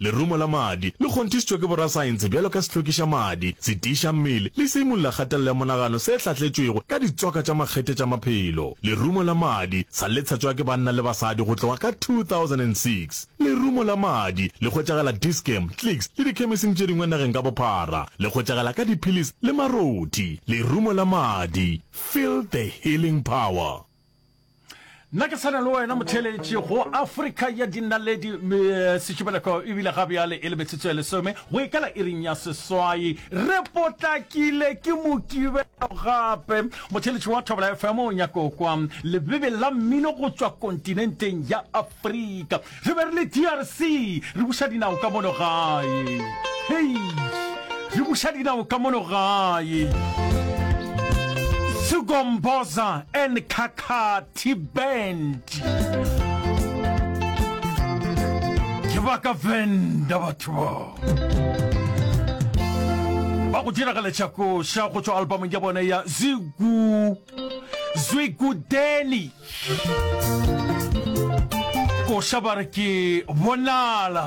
Lerumo la madi le kgonthišitšwe ke borasaense bjalo ka sehlokišamadi, setiišammele le seimolelakgatelelo ya monagano se hlatletšwego ka ditswaka tša makgethe tša maphelo. Lerumo la madi sa le tshetšwa ke banna le basadi go tloga ka 2006. Lerumo la madi le hwetšagala Dis-Chem, Clicks le dikhemising tše dingwe nageng ka bophara. Le hwetšagala ka diphilis le marothi. Lerumo la madi, Feel the healing power. nna ke tshwana le wena motheletši go afrika ya dinaledi eh, setšibeleko ebile ga bjale e le metsotso ya lesome go ikala iring ya seswai re potlakile ke mokibelo gape motheletši wa thobela fm o nyako kwa lebebe la mmino go tswa kontinenteng ya afrika Re be re le DRC, re buša dinao ka mono gae. Hei, re buša dinao ka mono gae. Sugomboza and Kakati Band. Ke ba ka venda batho ba. ba go diragaletša koša go tšwa albamong ya bona ya zigu zwigudeni koša ba re ke bonala